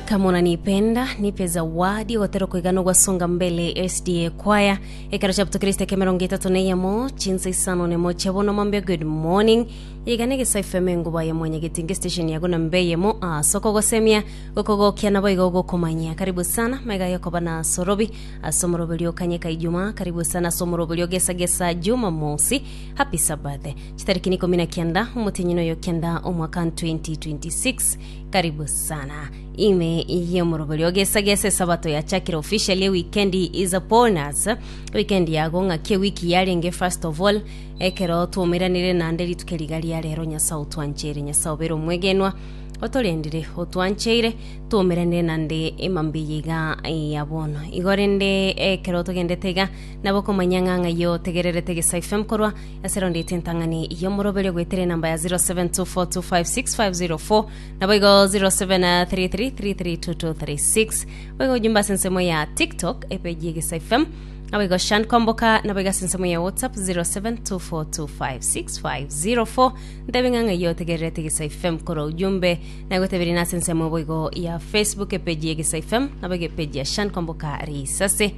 Kama unanipenda, nipe zawadi ogotera okoigana ogwa Songa Mbele SDA Choir. Ekero chia Butokristo ekia emerongo etato na eyemo, chinsa isano na emo chia bono mambia good morning. Iga na Egesae FM enguba ya mwanyageti nge station yago na mbe eyemo ase okogosemia, gokogokia na boigo ogokomanyia. Karibu sana, maiga aye okoba na asorobi ase omoroberio okanyeka Ijumaa, karibu sana ase omoroberio gesa gesa Jumamosi. Happy Sabbath. Chitariki ni ikomi na kianda omotienyi noyo kianda omwaka 2026. Karibu sana. Ime yomorobori ogesagesa esabato yachakire officially weekend is upon us. Weekend yago ng'aki wiki yarenge first of all ekero twomairanire nande rituke riga ria rero Nyasaye otwancheire Nyasaye obere omwegenwa otorendire otwancheire twomairanire nande emambia iga ya bono igo rende ekero togendete iga Nabo okomanya ng'a ng'ai otegererete egesaku FM korwa ase Rounded Entang'ani y'Omoroberio goetera enamba ya 0724256504 naboigo 0733332236 boigo ojumbe ase ensemo ya TikTok epeji y'egesaku FM naboigo Shan Komboka naboigo ase ensemo ya WhatsApp 0724256504 ntebi ng'a ng'ai otegererete egesaku FM korwa ojumbe nagoteberia nase ensemo boigo ya Facebook epeji y'egesaku FM naboigo epeji ya Shan Komboka risase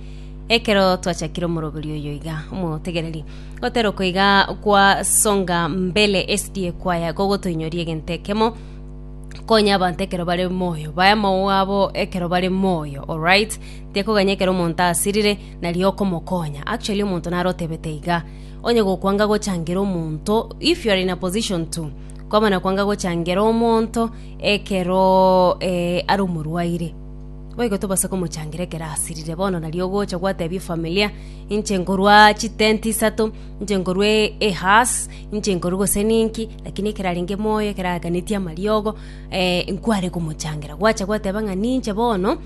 Ekero twachakire omoroberio oyo iga omotegereri gotera okoiga kwa songa mbele esidi ekwaya gogotoinyoria egento ekemo konya abanto ekero bare moyo baye amagoro abo ekero bare moyo alright tekoganya ekero omonto asirire nario okomokonya actually omonto naro otebete iga onye gokwanga gochangira omonto if you are in a position to kwamana kwanga gochangira omonto ekeroo eh, are omorwaire Boigo tobasa komochangira ekero asirire. Bono nario ogocha gwatebia efamilia, inche nkorwa chitenti isato, inche nkorwa e- ehaas, inche nkorwa gose ninki, lakini ekero arenge moyo ekero aaganetie amariogo, nkware komochangira. Gwacha gwateba ng'a ninche bono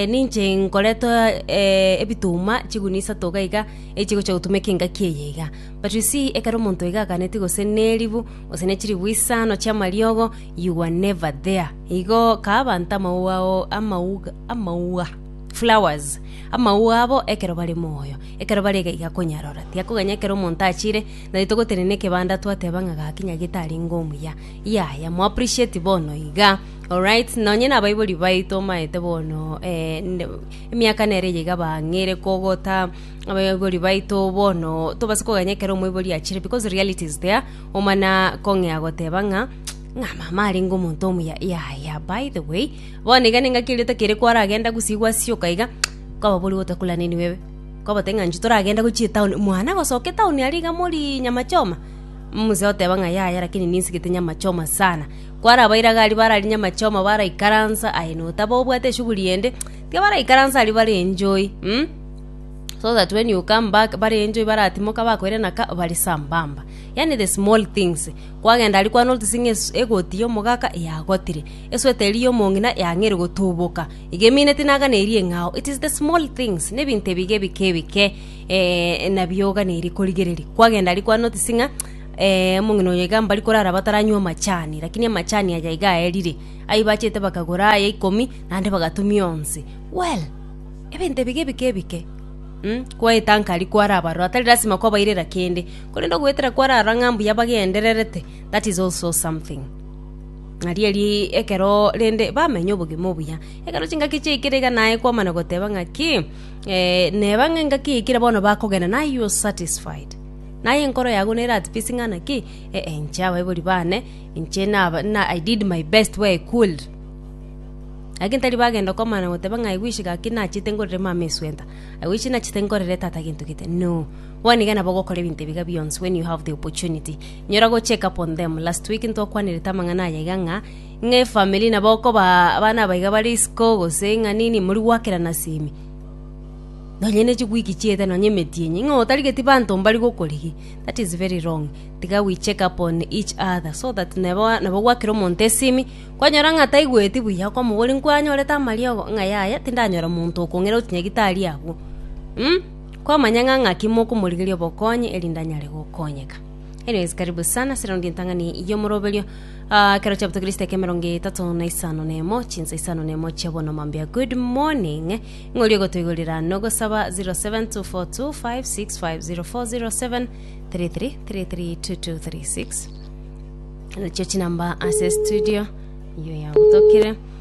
ninche nkoretoo ebituma chigunia isato iga iga, echigocha gotumeka engaki eye iga. But you see, ekero omonto iga aaganetie gose neribu, gose ne chiribu isano chiamariogo, you were never there. Igo kabanta amauga ao amauga, flowers, amauga abo ekero bare moyo. Ekero bare gaiga konyarora, tiakoganya ekero omonto achire, nari togotenena ekebanda twateba ng'a gakinya getarenge omuya. Yaya, mo appreciate bono iga. Alright, nonye na abaibori baito omaete bono emiaka nere eye iga bang'eire kogota abaibori baito bono tobase koganya ekero omoibori achire because reality is there, omana kong'ea goteba ng'a. Ng'a mama arenge omonto omuya. Yaya, by the way, bono iga nengaki eria otakere kwara agenda gusii gwasioka iga, kwababorigwe otakulaneniwe ebe. Kwabate ng'a inche toragenda gochia etaoni, mwana gosoka etaoni aria iga morii nyama choma? Mzee oteba ng'a yaya lakini ninsigete nyama choma sana. Kwarabaire iga aria bararia nyama choma baraikaransa, aye notaba obwate eshughuli ende, tiga baraikaransa aria bare enjoy mh, so that when you come back bare enjoy baratimoka bakoirana ka bare sambamba. Yaani the small things. Kwagenda aria kwane orutise ng'a egoti y'omogaka eyagotire, esweta eria y'omong'ina yang'eire gotuboka, iga emineti naganeirie eng'ao. It is the small things, nebinto ebiga ebike ebike, eh, nabio oganeirie korigereria. Kwagenda aria kwane orutise ng'a eh, omong'ina oyo iga mbari korara bataranywa amachani, rakini amachani aya iga aerire. Ayio bachete bakagora aya ikomi, naende bagatumia onsi. Well, ebinto ebiga ebike ebike, umm, kwaetanka aria kware abaroro, atari lasima kwabairera kende. Korende ogoetera kwarara ng'a mbuya bagendererete, that is also something. Narieri ekero rende bamenye obogima obuya. Ekero chingaki chiaikire iga naye kwamana goteba ng'a ki, eh, neba ng'a engaki yaikire bono bakogenda naye you are satisfied. Naye enkoro yago nere at peace ng'a naki, eh, eh inche abaibori bane, inche naba na I did my best where I could. Lakini tari bagenda komana goteba ng'a I wish gaki nachete ngorere mama esweater, I wish nachete ngorere tata gento gete, no. Bono iga nabo ogokora ebinto ebiga bionsi when you have the opportunity. Nyora go check up on them. Last week ntwakwanerete amang'ana aya iga ng'a ng'a efamily nabo okoba abana aba iga bare isiko gose ng'a nini mori gwakerana ase ime. Nonye ne chiwiki chiete nonye emeti enye ng'a otarigeti banto mbari gokorigia. That is very wrong. Tiga we check up on each other so that nebo nabo gwakera omonto ase ime kwanyora ng'a taigweti buya okomoboria nkwanyorete amariogo ng'a yaya tindanyora monto okong'ira oti nyagitari agwo mm. Kwamanya ng'a ng'aki mokomorigeria obokonyi erinde anyare gokonyeka. Anyways karibu sana ase raundi entang'ani y'omoroberio Ah, kero chapter kristo eke emerongo etato na isano na emo chinsa isano na emo chia bono mambia good morning ng'ori ogotoigorera nogosaba 07242565040733332236 nachio chinamba ase studio iyo yagotokire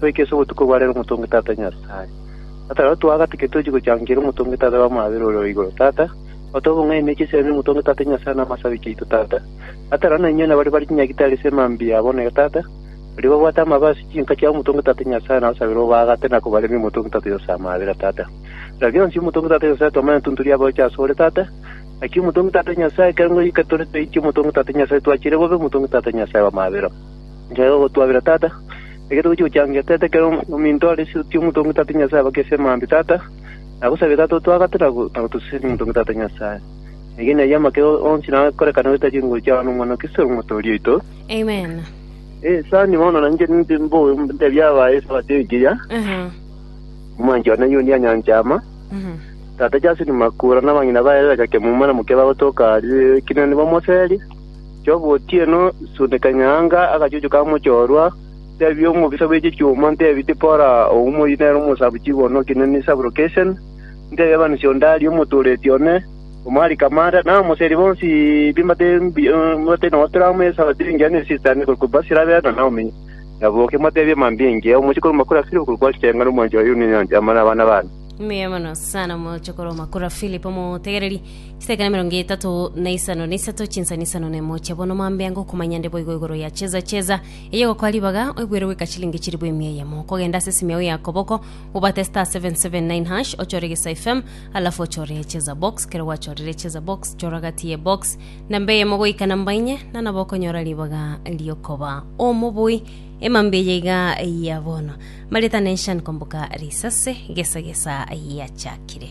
Toike ase obotuko bwa rero omotongi tata Nyasae. Tata, rora twagate ki tochia gochangeria omotongi tata bamwabera ore o igoro, tata, gotoba bong'aini na emechi esebani omotongi tata Nyasae na amasabi chiaito, tata. Tata, rora nainwe nabare bare chinyagitari ase emambia yabo onere, tata, baria babwate amabe ase chinka chiabo omotongi tata Nyasae nabasabere obaagate na kobaremia omotongi tata Nyasae amabera, tata. Rora bionsi omotongi tata Nyasae twamanya ntunturia abaocha ase ore, tata. Naki omotongi tata Nyasae, ekero ngorikire tore toichi omotongi tata Nyasae, twachire bobe omotongi tata Nyasae bamabera. Nchaire gogotwabera, Tata, ekero togochia gochangia, teta ekero ominto ore ase oti omotonge Tata Nyasae abake ase amaambia, Tata, nagosabire, Tata, otwagate na gotosesenera omotonge Tata Nyasae. Eyio neyio amake onsi nakorekane goeta chinguru chiao n'omwana o Kristo ore Omotoori oito. Amen. Sani bono nainche ninche mbobe ntebie abaye esabato engiya, omwanchwa naiyo onde anyanche ama, Tata Justin Makura na abang'ina baye Rebecca Kemuma na mokia bagotoka aria ekeene nibamoserie. Chi'ogotieno Sudeka Nyaanga agachuchuka amochorwa, teebia omobisa bwe chichuma, nteebia Tipora, oyio moyio nere omosabu chigono o kinene Saburokeseni, nteebia abanisi o Dari omotooreti one, o Malika amaanda, na abamoseri bonsi b'embata embia nonya tore amo Esaroti engiya ne Esitani okorokwa Ebasi rabeere na Naomi, naboke mbateebie mambia engiya. Omochie korwa Makura Filipo okorokwa Asitenga na omwanchwa Yuniyoni, amo nabana baane. Mbuya mono sana omochie korwa Makura Filipo, omotegereri. Seke nemerongo etato na isano na isato chinsani isano nemo chia bono mambe ango kumanya nde boigo igoro ya cheza cheza eye gokoa ribaga oigwere goika chilingi chiribu emia eyemo kogenda ase simiao ya koboko obate star 779 hash ochore gesa fm alafu ochore cheza box kero gwachorire cheza box chora gati ye box namba eyemo goika namba inye na nabo okonyora ribaga riokoba omoboi emambe eye iga ya bono marita nenshan komboka risase gesa gesa yachakire